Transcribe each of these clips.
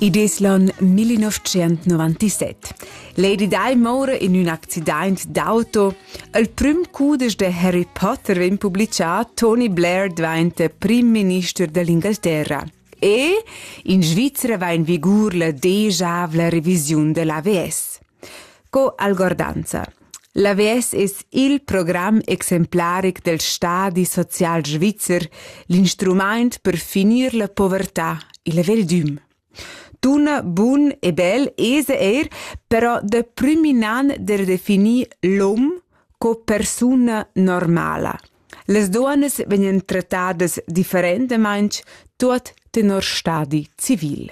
Id es l'on 1997. Lady Di moura in ün accidaint d'auto. Il prüm cudesch de Harry Potter vegn publichà, Tony Blair dvainta prim minister dell'Inghilterra. E in Svizzera va in vigur la degiavla revisiun dell'AVS. Sco algordanza. L'AVS es il program exemplaric del stadi social svizzer, l'instrumaint per finir la povertà, il veldüm. Tuna bun e bel es eir però da prüm in an da definir l'hom co persuna normala. Las duonas vegnan trattadas differentamaing tuot tenor stadi civil.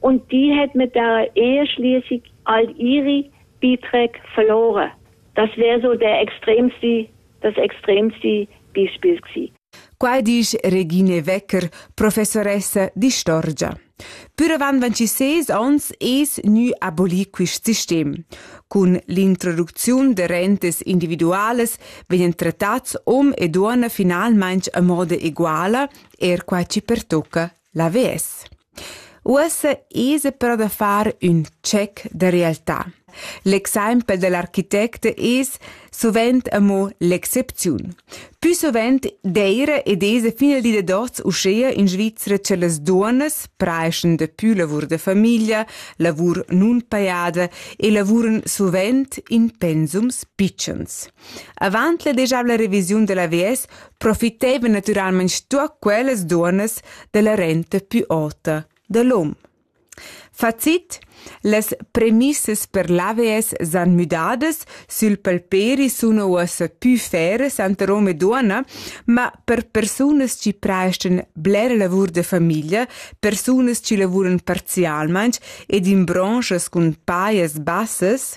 Und die hat mit der Ehe schließlich all ihre Beiträge verloren. Das wäre so der extremste, das extremste Beispiel gewesen. Quai disch Regine Wecker, professoressa di Storgia. Püravan van ci ses ons es gnü abolir quist sistem. Cun l'introducziun de rentes individuales vegnan trattats om ed uona finalmaing a moda eguala, er quai ci pertocca L'avess. Uossa esa però da far ün check da realtà. L'exaimpel da l'architect es suvent amo l'excepziun. Pü suvent d'eira ed esa fin al di da hoz uschea in Svizra cha las duonnas preischen dapü lavur da famiglia, lavur nunpajada e lavuran suvent in pensums pitschens. Avant la degiavla revisiun dalla VS profitevan naturalmein stuer quellas duonnas dalla renta pü ota da l'hom. Facit Las premissas per l'AVS san müdadas, sül palperi suna uossa pü feras tanter hom e duonna, ma per persunas chi prestan bler lavur da famiglia, persunas chi lavuran parzialmaing ed in bronzas cun pajas bassas,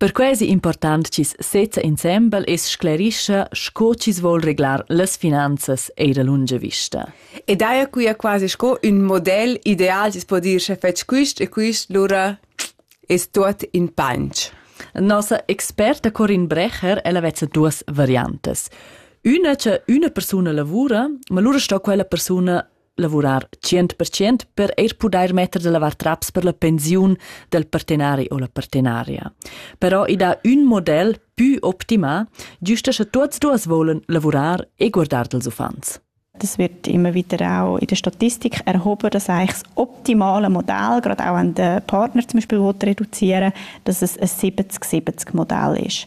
Perquai es important chi's sezza insembel e's sclerischa sco chi's voul reglar las finanzas eir a lunga vista. E daja quia quasi sco ün model ideal chi's po dir sche fetsch quist e quist, lura es tuot in panch. Nossa experta Corin Brecher, ella vezza duas variantas. Üna cha üna persuna lavura, ma lura sto quella persuna lavurar 100% per eir pudair metter da lavar traps per la pensiun del partenari o la partenaria. Però i dà ün model pü optimà, giusta sche tuots duas volen lavurar e guardar dels uffants. Das wird immer wieder auch in der Statistik erhoben, dass eigentlich das optimale Modell, gerade auch wenn der Partner zum Beispiel reduzieren will, dass es ein 70-70-Modell ist.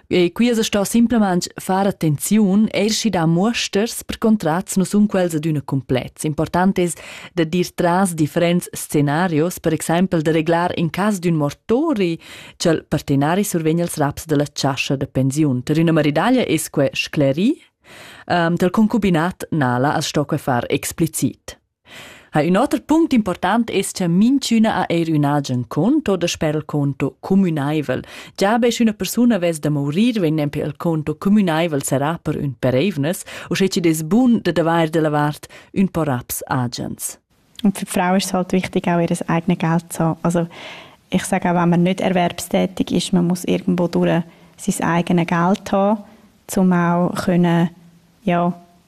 E qui es sto simplamaing far attenziun eir schi da muosters per contrats nu sun quels adüna complets. Important es da dir tras differents scenarios, per exaimpel da reglar in cas d'ün mortori cha'l partenari survegn als raps dalla chascha da pensiun. Per üna maridaglia es que scleri, um, ehm, tal concubinat nala as sto que far explicit. Ha ün oter punct important es cha minchüna ha eir ün agen conto o dasper il conto cumünaivel. Già be sch'üna persuna vess da mourir, vegn nempe il conto cumünaivel serrà per ün per eivnas, uschè chi'd es bun dad avair da la vart ün po raps agens. Und für die Frauen ist es halt wichtig, auch ihr eigenes Geld zu haben. Also, ich sage auch, wenn man nicht erwerbstätig ist, man muss irgendwo durch sein eigenes Geld haben, um auch können, ja,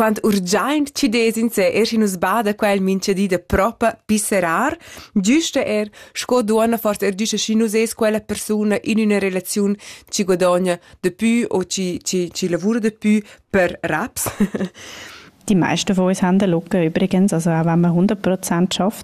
quant urgiaint chi dess in se er schi nus bada quel minchedi da propa pisserar, giusta er sco duonna forse er giusta schi nus es quella persuna in üna relaziun chi guadogna de pü o chi, chi, chi lavura de pü per raps. Die meisten von uns haben locker übrigens, also auch wenn man 100% schafft,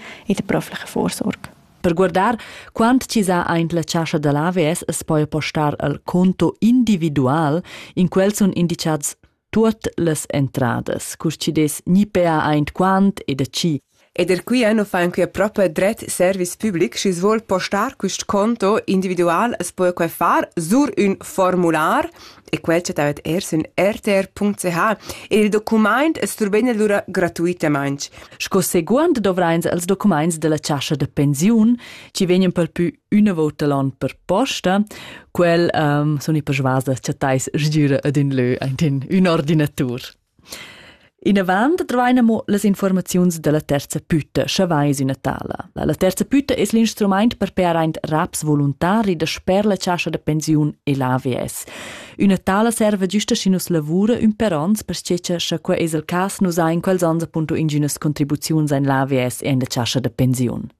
e da proflecha vorsorg. Per guardar quant chi sa aint la chascha da l'AVS es poi postar al conto individual, in quel sun indicats tuot las entradas, cur chi des gni pea aint quant e da chi. Ed er qui eno fa anche proprio dret service public, schi svol postar quist conto individual, es poi quai far sur ün formular e quel chattavet er sün rtr.ch. Il documaint es survegn lura gratuitamaing. Sco seguond dovrains els documaints della chascha da pensiun, chi vegnan per pü üna vota l'on per posta. Quel um, sun i persuas da chattais sgüra ad ün lö aint in ün ordinatur. Inavant dvain amo las infuormaziuns da la terza püta, scha vais üna tala. La terza püta es l'instrumaint per pear aint raps voluntari dasper la chascha da pensiun e l'AVS. Üna tala serva güsta schi nus lavura ün per ons, perche scha quai es il cas nus hain quels ons appunto ingünas contribuziuns in l'AVS e in la chascha da pensiun.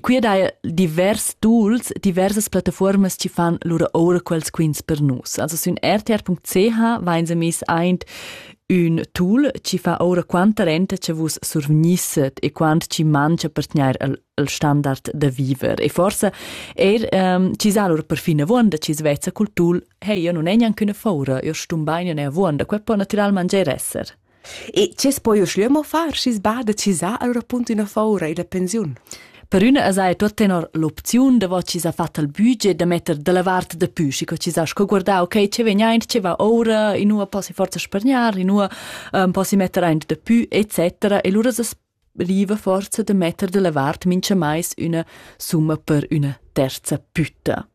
Qui ed hai divers tools, diversas plattaformas chi fan lura oura quels quints per nus. Also sün rtr.ch vain se miss aint ün tool chi fa oura quanta renta che vus survgnisset e quant chi mangia per tgnair il, il standard da viver. E forse er um, chi sa lur perfin avuonda, chi svezza cultul, hey, io non è neanche una faura, io stum bain, io ne avuonda, quel può naturalmente esser. E che es poi uschlö mo far, schi's bada chisà al rapunt üna foura illa pensiun? Per üna esa ei tot tenor l'opziun davot chi s'ha fat al budget da metter dalla vart da pü, schi co chi s'ha sco guardà, okay, che vegn aint, che va oura, inua possi forza spargnar, inua ähm, possi metter aint da pü, etc. E lura s'as riva forza da metter dalla vart mincha mais üna summa per üna terza pütta.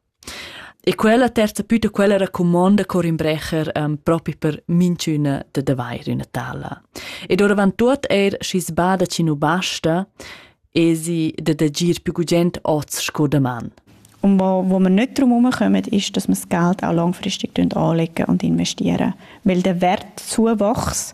E quella terza püta quella racumonda Corin Brecher um, propi per minchüna da d'avair üna tala. Ed oravant tuot eir schi sbada chi nu basta, esi da d'agir più gugent oz sco daman. Und wo, wo wir nicht darum herumkommen, ist, dass wir das Geld auch langfristig anlegen und investieren. Weil der Wert Zuwachs